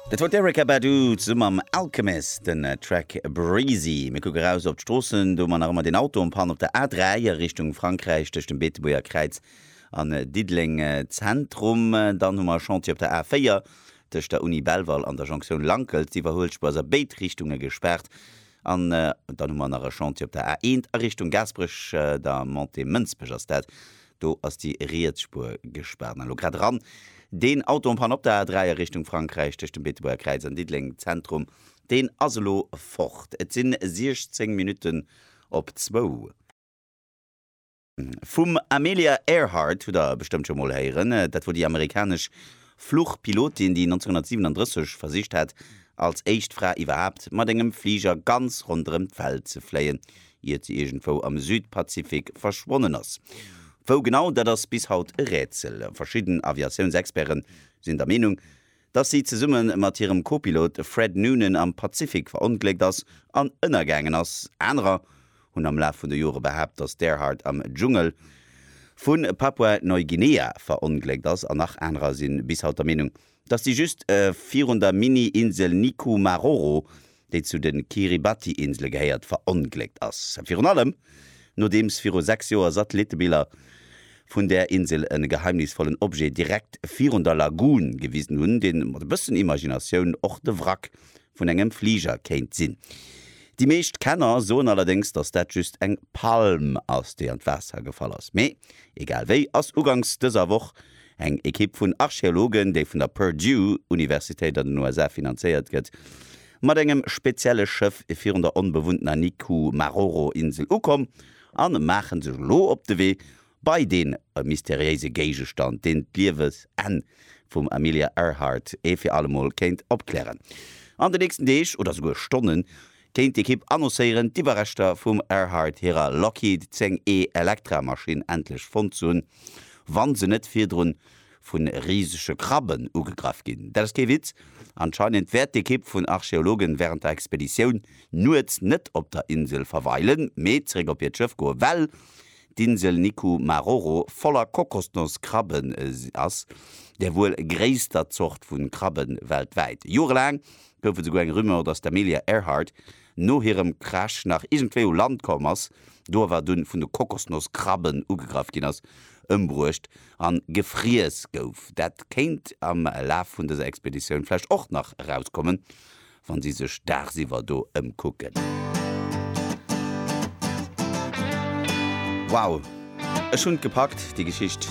Dat wor d'Erykah Badu zesumme mam Alchemist, den Track Breezy. Mir kucke raus op d'Stroossen, do mar nach ëmmer deen Auto en Panne op der A3 a Richtung Frankräich tëscht dem Beetebuerger Kräiz an Diddeleng Zentrum. Dann hu mer e Chantier op der A4 tëscht der Uni Belval an der Jonktioun Lankels. D'Iwwerhuelspuer ass a béid Richtunge gespaart. An dann hu mer nach e Chantier op der A1 a Richtung Gaasperech, der Montée Mënsbech ass dat, do ass déi riets Spuer gespaart. An elo grad eran deen Auto en panne op der A3 a Richtung Frankräich tëscht dem Beetebuerger Kräiz an Diddeleng Zentrum, deen ass elo fort. Et sinn 16 Minutten op zwou. Vum Amelia Earhart hutt der bestëmmt scho mol héieren. Dat wor déi amerikanesch Fluchpilotin, déi 1937 versicht hat, als éischt Fra iwwerhaapt mat engem Fliger ganz ronderëm d'Welt ze fléien. iert se iergendwou am Südpazifik verschwonnen ass. Wou genau, dat ass bis haut e Rätsel. Verschidden Aviatiounsexperte sinn der Meenung, dass si zesumme mat hirem Co-Pilot Fred Noonan am Pazifik verongléckt ass an ënnergaangen ass. Anerer hunn am Laf vun de Jore behaapt, dass d'Earhart am Dschungel vu Papua-Neuguinea verongléckt ass. An nach anerer si bis haut der Meenung, Dass si just virun der Mini-Insel Nikumaroro, déi zu de Kiribati-Insele gehéiert, verongléckt ass. Virun allem nodeems viru 6 Joer Satellittebiller vun där Insel e geheimnisvollen Objet direkt virun der Lagun gewisen hunn, dee mat e bëssen Imaginatioun och de Wrack vun engem Fliger kéint sinn. Déi meescht Kenner soen allerdéngs, dass dat just eng Palm ass, déi an d'Waasser gefall ass. Mee egal wéi ass uganks dëser Woch Eng Ekipp vun Archeologen, déi vun der Purdue Universitéit an den USA finanzéiert gëtt, mat engem spezielle Schëff virun der onbewunntener Nikumaroro-Insel ukomm a maache sech elo op de Wee bei dee mysteriéise Géigestand, deen d'Liewesenn vum Amelia Earhart ee fir allemol kéint opklären. An de nächsten Deeg, oder souguer Stonnen, kéint d'Ekipp annoncéieren, d'Iwwerreschter vum Earhart hirer Lockheed 10 E Electra Maschinn endlech fonnt ze hunn, wa se net virdrun vu risege Krabben ugegraff ginn. Dat ass kee Witz, anscheinend wäert d'Ekipp vun Archeologen wärend der Expeditioun nuets net op der Insel verweilen, mee zeréck op hiert Schëff goen, well d'Insel Niku Maroro voller Kokosnosskrabben ass, der wuel gréisster Zort vu Krabben weltwäit. Jorelaang gouf et souguer eng Rumeur, dass d'Amelia Earhart no hirem Crash nach iergendwéi u Land komm ass, do awer dunn vun de Kokosnosskrabben ugegraff ginn ass, ëmbruecht a gefriess gouf. Dat kéint am Laf vun dëser Expeditioun vläicht och nach erauskommen, wa si sech dagsiwwer do ëmkucken. Wow, ech hunn d'gepackt, déi Geschicht!